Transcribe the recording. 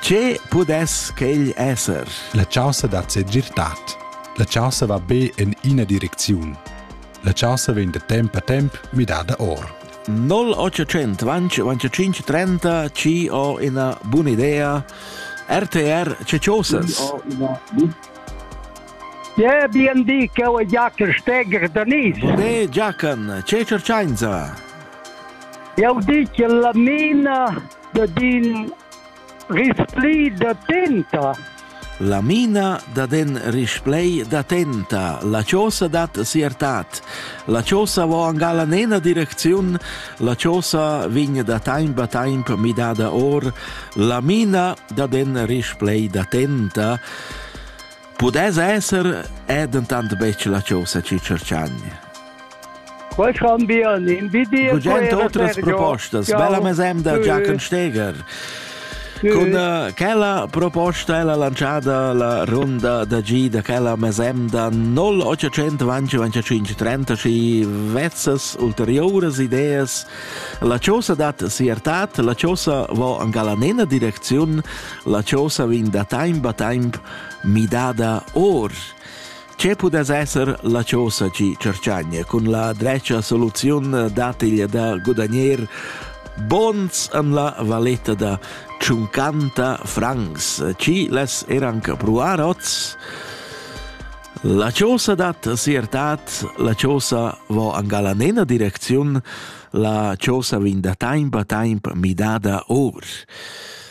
Che pudess quegl esser? La chaussa da segirtad. La chaussa va be en ina direcziun. La chaussa vegn da temp a temp midada or. 0800 25 30 ci ho una buona idea RTR Ceciosas Je BND che ho Jacker Steger da Nis Ve Giacan ce cerciainza Eu dic la mina de din Rispli da tenta. La mina dat en risplei da tenta. La chosa dat siertat. La chosa vo angal a nena direcziun. La chosa vegn da taimp a taimp midada or. La mina dat en risplei da tenta. Pudess esser è dentant betg la chosa chi tscherchagni. Quai chan bia in video. Bugent otras propostas. Bella mesemda, Giachen Steger. Con uh, quella proposta è la lanciata la ronda da G da quella mesemda 0825 30 vezzas ulteriores ideas la chosa dat siertat la chosa va an galanena direcziun la chosa vin da time ba time midada or. Che pudess esser la chosa chi cerchagna cun la drecha soluziun datiglia da gudagner bons an la valetta da 50 francs, chi les eranca pruar oz? La chosa dat siertat, la chosa vo angala nena direcziun, la chosa vin da taimpa taimp midada or.